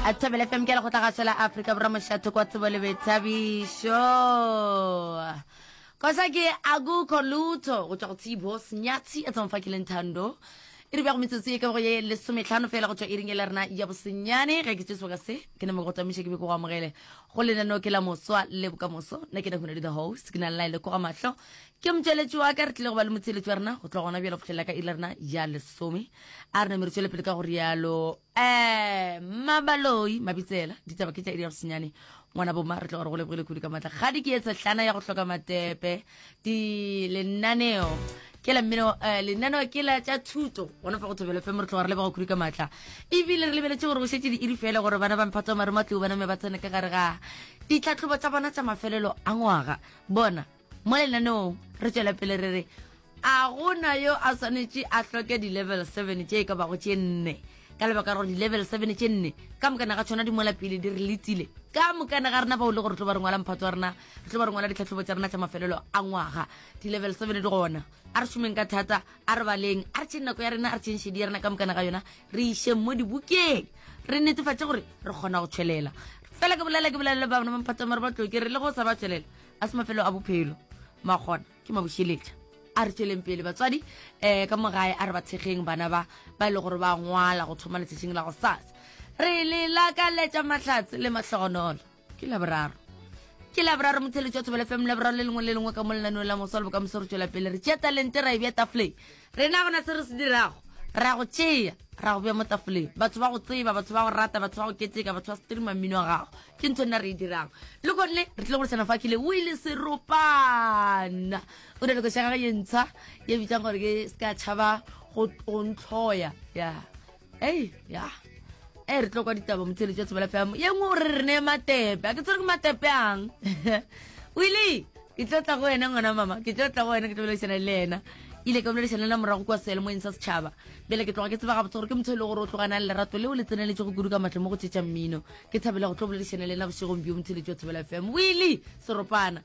a thobele fm ke le go tla ga sela afrika borwa mošatho kwa tsebo le bethabišo kosa ke akukho lutho go tswa go tsebo senyatshi a tsamfa ke leng thando e re bja go metsotso e ka go ye lesometlhano fela go tswa e ring e le rena ya bosenyane ge ke tse sebaka se ke ne mo go tamiša ke be ke go amogele go lenaneo ke la moswa le bokamoso nna ke ne go ne le the host ke na le laele ko ga mahlo Ke motšweletši wa ka, re tlile go ba le motšweletši wa rena go tloga gona bjalo go fihlelela ka iri ya rena ya lesome. A re name re tšwele pele ka go rialo. Um Mabaloi Mabitsela, ditaba ke tša iri ya bosenyane. Ngwana bomma, re tloga re go lebogile kudu ka maatla. Kgadi ke ye sehlana ya go hloka matepe. Di lenaneo ke la mmino eh, lenaneo ke la tša thuto gona fa go thobelo fm re tloga re leboga kudu ka maatla ebile re lebeletse gore go šetse di iri fela gore bana ba mphatsa mare matlibo bana me ba tsene ka gare ga ditlhatlhobo tsa bona tsa mafelelo a ngwaga bona mo lenaneong re tšwela pele re re a gona yo a swanetše a hloke di-level seven tše e ka bago tše nne ka lebaka gore di-level seven tše nne ka mokana ga tshwana di mola pele di re letsile ka mokana ga rena bao le gore re tlo ba re ngwala mphatso wa rena re tlo ba re ngwala ditlhatlhobo tsa rena tsa mafelelo a ngwaga di-level seven di gona a re šomeng ka thata a re baleng a re tšheng nako ya rena a re tšheng šedi ya rena ka mokana ga yona re išeng mo dibokeng re netefatše gore re kgona go tšhwelela fela ke bolela ke bolela le bana ba mphatso mare ba tloke re le go sa ba tšhwelela a se mafelo a bophelo magona ke mabušeletša a re tšweleng pele batswadi um ka mogae a re ba thekgeng bana ba ba e le gore ba ngwala go thoma letšatšing la go sasa re le lakaletša mahlatse le mahlogonolo ke laboraro ke laboraro motheletšo wa thobele fm laboraro le lengwe le lengwe ka mo lenaneo la moso le bokamoso re tšwela pele re tšea talente ra e bja tafoleng Rena gona se re se dirago, ra go tšea, ra go bea mo tafoleng. Batho ba go tseba, batho ba go rata, batho ba go keteka, batho ba streama mmino wa gago. Ke ntho nna re e dirang. Le gone re tlile go leshana fa kile Willy Seropana. O na le koša gage ye ntsha ye bitsang gore ke Ska Tšhaba go go ntlhoya. Yeah. ei ya e re tlo kwa ditaba motheletši wa tshebela fm ye nngwe o re re neye matepe a ke tsere ke matepe ang wile ke tlo tla go wena ngwana mama ke tlo tla go wena ke tlo boledišana le ena ile ka boledišana la morago kwa sealemoeng sa setšhaba bjale ke tloga ke tseba gabotse gore ke motho e le gore o tlogana le lerato leo le tseneletse go kudu ka matlho mo go tšetša mmino ke thabela go tlo boledišana le ena bošegong bjo motheletši wa tshebela fm wile seropana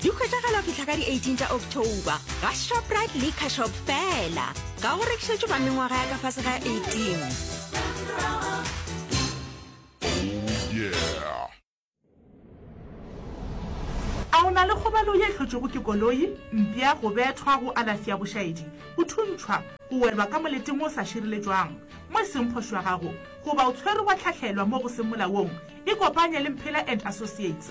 di hwetšagala go fihla ka di-18 tša october ga shoprite le cashop fela ga go rekišetšo ba mengwaga ya ka fase ga 18 a o na le kgobalo ye hlotšwego ke koloi mpša go bethwa go alafi ya bošaedi go thuntšhwa go welwa ka moleteng o sa šireletšwang mo e seng phošo ya gago goba o tshwerwe wa tlhahlelwa mo go seng molaong ikopanye le mphela and associates